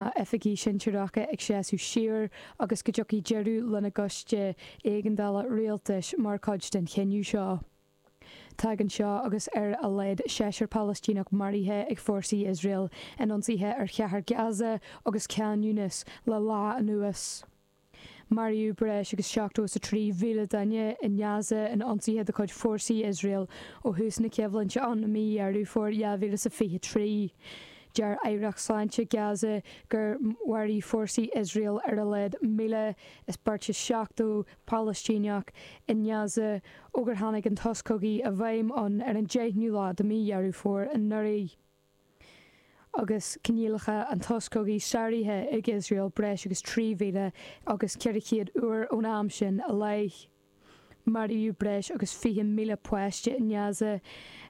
a oifigigh shinsearacha ag seasamh siar agus go dtiocfaidh deireadh lena gcoiste éigeandála rialtais mar chuid den chinneadh seo. Tagann seo agus ar a laghad seisear Palaistíneach maraithe ag fórsaí Iosrael in ionsaithe ar chathair Gaza agus Khan Younis le lá anuas. Maraíodh breis agus seachtó is a trí mhíle duine i nGaza in ionsaithe de chuid fórsaí Iosrael ó thús na coimhlinte ann i mí Dheireadh Fómhair 2000 is a fiche trí. Deir Aireacht Sláinte Gaza gur mharaigh fórsaí Iosrael ar a laghad míle is beirt is seachtó Palaistíneach i nGaza ó gur tháinig an sos cogaidh i bhfeidhm ann ar an deichniú lá de mí Dheireadh Fómhair anuraidh. agus coinníollacha an tsosa cogaidh sáraithe ag Iosrael breis agus 3,000 agus 400 uair ón am sin i leith. Maraíodh breis agus 20,000 páiste i nGaza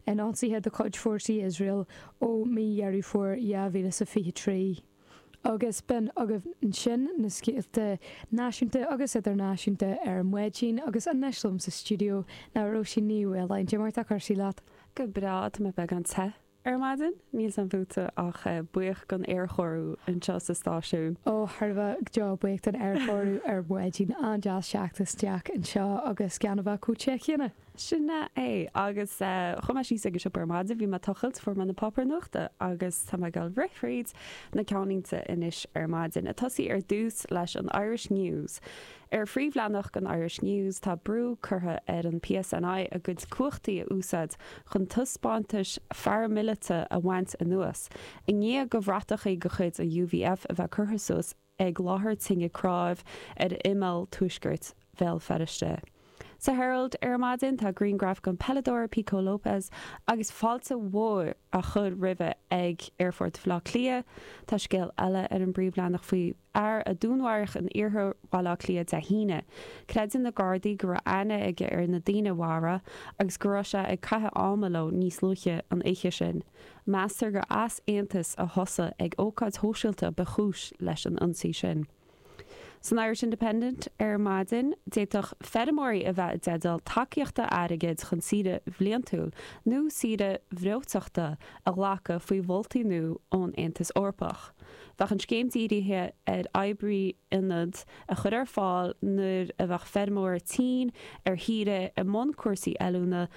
in ionsaithe de chuid fórsaí Iosrael ó mí Dheireadh Fómhair 2023. agus b'in agaibh ansin na scéalta náisiúnta agus idirnáisiúnta ar maidin agus anois liom sa stiúideo ná Róisín Ní Mhaoláin. Cad é mar atá cúrsaí leat? Go breá, tá mé beagán te ar maidin, níl's a'm fútsa ach buíoch don aerchóiriú anseo sa stáisiún. Ó, thar a bheith, buíoch don aerchóiriú ar maidin, an-deas theacht isteach anseo agus gan a bheith chomh te céanna. Sin é. Agus chuaigh mé síos ag an siopa ar maidin bhí mé tochailt, fuair mé na páipéir nuachta agus tá mé ag gabháil a rith thríd na ceannlínte anois ar maidin. Ag tosaí ar dtús leis an Irish News. Ar phríomhleathanach an Irish News tá brú curtha ar an PSNI a gcuid cumhachtaí a úsáid chun taispeántais pharaimilite a bhaint anuas i ndiaidh do bhratachaí de chuid an UVF a bheith curtha suas ag láthair tine chnámh ar imeall tuaiscirt Bhéal Feirste. Sa Herald ar maidin tá grianghraf den peileadóir Pico Lopes agus fáilte mhór á chur roimhe ag Aerfort Bhaile Átha Cliath. Tá scéal eile ar an bpríomhleathanach faoi fhear a dúnmharaíodh in iarthar Bhaile Átha Cliath Dé hAoine. Creideann na Gardaí go raibh aithne aige ar na daoine a mharaigh é agus go raibh sé ag caitheamh ama leo níos luaithe an oíche sin. Meastar gur easaontas a thosaigh ag ócáid shóisialta ba chúis leis an ionsaí sin. San Irish Independent ar maidin, d'fhéadfadh feirmeoirí a bheith i dteideal tacaíochta airgid chun saoire bhliantúil nó saoire bhreoiteachta a ghlacadh faoi mholtaí nua ón Aontas Eorpach. Bheadh an scéim dírithe ar oibrithe ionaid a chur ar fáil nuair a bheadh feirmeoirí tinn ar saoire i mbun cúrsaí oiliúna,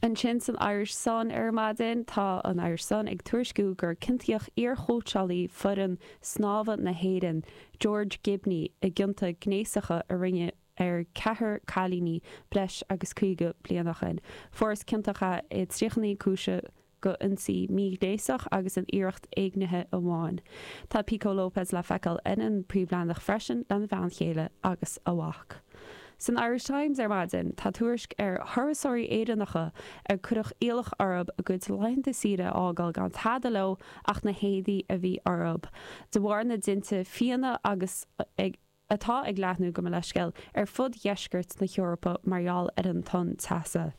Ansin san Irish Sun ar maidin tá an Irish Sun ag tuairisciú gur ciontaíodh iarchóitseálaí fhoireann snámha na hÉireann, George Gibney, i gcionta gnéasacha a rinneadh ar cheathrar cailíní breis agus 50 bliain ó shin. Fuarthas ciontach é i dtríocha naoi gcúiseamh. go ionsaí míghnéasach agus in iarracht éignithe amháin. Tá Pico Lopes le feiceáil ar an bpríomhleathanach freisin lena bhean chéile agus a mhac. San Irish Times ar maidin tá tuairisc ar thurasóirí Éireannacha ar cuireadh iallach orthu a gcuid laethanta saoire a fhágáil gan tada leo ach na héadaí a bhí orthu de bharr na dtinte fiáine agus ag atá ag leathnú gabh mo leithscéal ar fud dheisceart na hEorpa mar gheall ar an tonn teasa.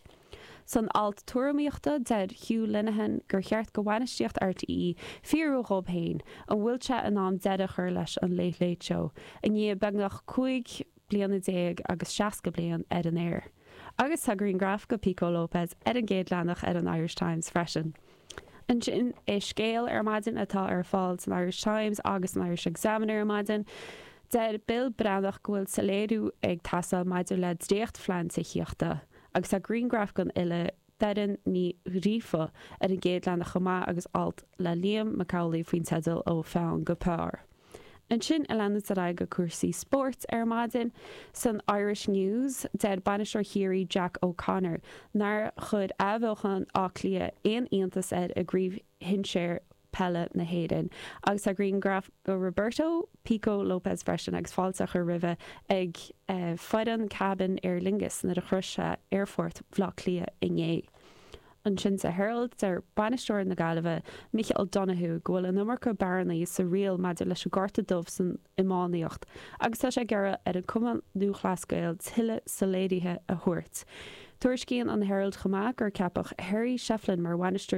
San alt tuairimíochta, deir Hugh Linehan gur cheart do bhainistíocht RTÉ fiafraí dhóibh féin an bhfuil sé in am deireadh a chur leis an Late Late Show i ndiaidh beagnach 15 bliana agus 60 bliain ar an aer. Agus tá grianghraf de Pico Lopes ar an gcéad leathanach ar an Irish Times freisin. Ansin, i Scéal ar maidin atá ar fáil san Irish Times agus san Irish Examiner ar maidin. Deir Bill Breathnach go bhfuil soiléiriú ag teastáil maidir le dréachtphlean tithíochta, agus tá grianghraf den fhile Doireann Ní Ghríofa ar an gcéad leathanach chomh maith agus alt le Liam Mac Amhlaigh faoin teideal Ó Pheann go Pár. Ansin ag leanacht ar aghaidh go cúrsaí spóirt ar maidin. San Irish News, deir bainisteoir Chiarraí Jack O'Connor nár chuir athbheochan Átha Cliath aon iontas air i gCraobh Shinsear Peile na hÉireann agus tá grianghraf de Roberto 'Pico' Lopes freisin agus fáilte á chur roimhe ag foireann cabin Aer Lingus, nuair a shrois sé aerfort Bhaile Átha Cliath inné. ansin sa Herald, deir bainisteoir na Gaillimhe, Micheál Donoghue, go bhfuil an iomarca bearnaí sa riail maidir leis an gcárta dubh san iománaíocht agus tá sé ag iarraidh ar an Cumann Lúthchleas Gael tuilleadh soiléirithe a thabhairt. Tuairiscíonn an Herald chomh maith gur ceapadh Harry Shefflin mar bhainisteoir